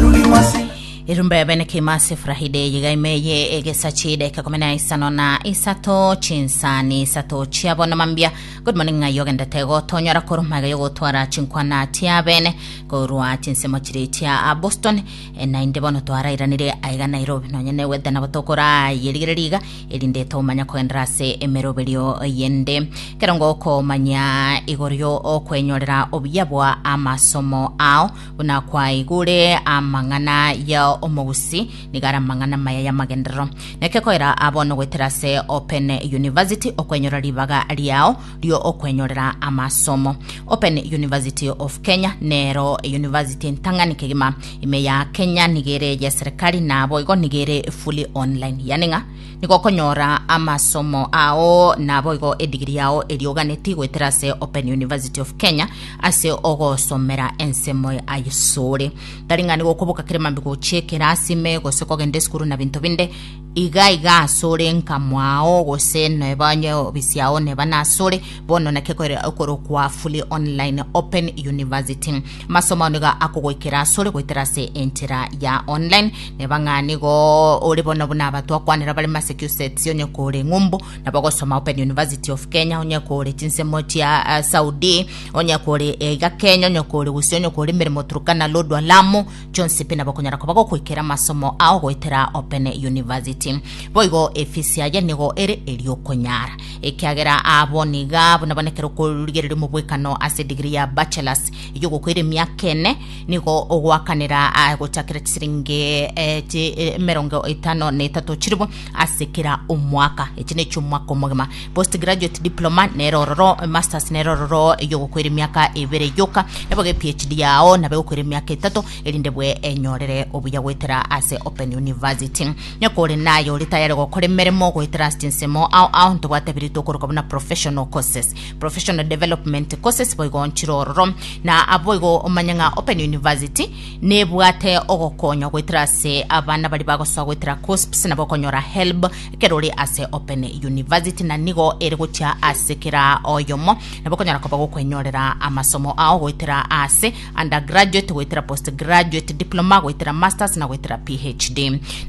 ruri mwase. Erumbe bene kimasi furahide yiga imeye egesa chiideka kumi na isano na isato chinsani isato chiabo na mambia good morning ng'ai ogendete gotonyora koru maiga yogotwara chinkwana tia bene korwa chinsemo chiri tia a boston E, naende bono twarairanire aiga nairobi nonye newete nabo tokorayerigereria iga erinde tomanya kogendera ase emeroberio yende kerongo okomanya igoro yo okwenyorera obuya bwa amasomo ao Buna kwaigure amang'ana ya omogusii, nigo are amang'ana amaya y'amagenderero. Naki koira abo nogoetera ase Open University okwenyora ribaga riao rio okwenyorera amasomo. Open University of Kenya nero eyunivasiti entang'ani kegima. Ime ya Kenya nigo ere eyeserikari na boigo nigo ere fully online, yani ng'a Nigo okonyora amasomo ao naboigo edigiri yao eria oganeti goetera ase Open University of Kenya ase ogosomera ensemo ya Isore. Tari ng'ani gokoboka kere mambi gochia ekerasi ime gose kogenda esukuru na binto binde. Iga iga asore nkamwao gose neba nye obisi yao neba nasore bono naki ekore- ekorokwa fully online Open University. Masomo ao nigo akogoikera asore goetera ase enchera ya online neba ng'a nigo ore bono buna aba twakwanera bare Massachusetts onye kore ng'umbu nabo gosoma Open University of Kenya onye kore chinsemo chia eh, Saudi onye kore eh, iga Kenya onye kore gose onye kore emeremo Turkana Lodwar Lamu chonsi pi nabo okonyara koba gokoikera masomo ao goetera Open University boigo efisi yaye nigo ere eriokonyara ekiagera abo niga buna bana ekero okorigereria omobwekano ase degree ya bachelors Igo gokoira emiaka ene nigo ogoakanera ah, gochakera chisiringi eh, chi eh, emerongo etano na etato chiribo ase kera omwaka echi nechi omwaka omogima post graduate diploma nere ororo eh, masters nere ororo igo gokoira emiaka ebere yoka nabo ge phd yao nabe gokoira emiaka etato erinde bwe enyorere obuya goetera ase open university nyoka ore naye ore tayari gokora emeremo goetera ase chinsemo ao ao ntobwate biri tokoroka buna professional courses professional development courses boigo onchire ororo na aboigo omanye ng'a open university nebwate ogokonya goetera ase abana bari bagosoa goetera cosps nabo okonyora help ekero ore ase open university na nigo ere gochia ase kera oyomo nabo okonyora koba gokwenyorera amasomo ao goetera ase undergraduate goetera postgraduate diploma goetera masters na goetera phd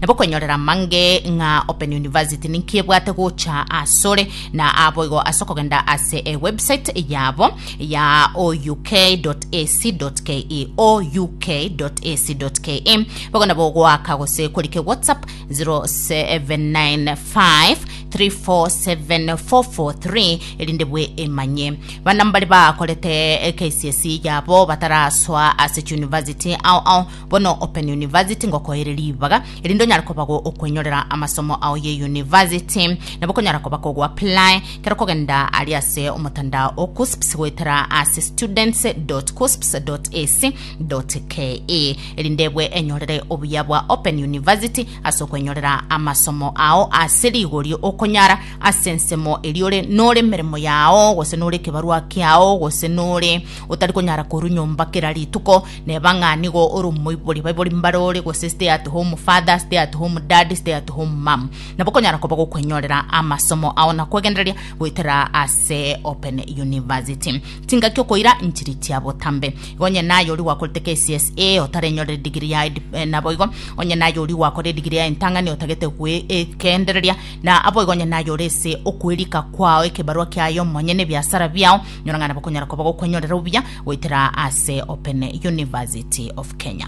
nabo okwenyorera mange ng'a open university ninki ebwate gocha asore na aboigo ase okogenda ase ewebsite yabo ya ouk.ac.ke ouk.ac.ke bagona bogoaka gose korike whatsapp 0795347443 erinde bwe emanye bana mbare bakorete KCSE yabo batarasoa ase chuniversity ao ao Bono Open University ngokoere ribaga erinde onyare kobagwo okwenyorera amasomo ao ye university nabo konyara koba kogo apply kero kogenda ari ase omotandao o KUSPS goetera ase students.kusps.ac.ke erinde ebwe enyorere obuya bwa Open University ase okwenyorera amasomo ao ase rigori okonyara ase ensemo eri ore nore meremo yao gose nore ekebarua kiao gose nore otari konyara koru nyomba kera rituko Neba ng'a nigo ore omoibori, baibori mbare ore, gose stay at home father, stay at home dad, stay at home mum. Nabo okonyara koba gokwenyorera amasomo ao na kwegendereria goetera ase Open University. Chingaki okoira nchiri chia botambe. Igo onye naye oria gwakorete KCSE otarenyorire degree yaye dip- eh, naboigo onye naye oria gwakore degree yaye entang'ani otagete gwegendereria na aboigo onye naye ore ase okwerika kwao ekebarua kiaye omonyene ebiasara biao Nyora ng'a nabo konyara koba gokwenyorera obuya goetera ase Open University of Kenya.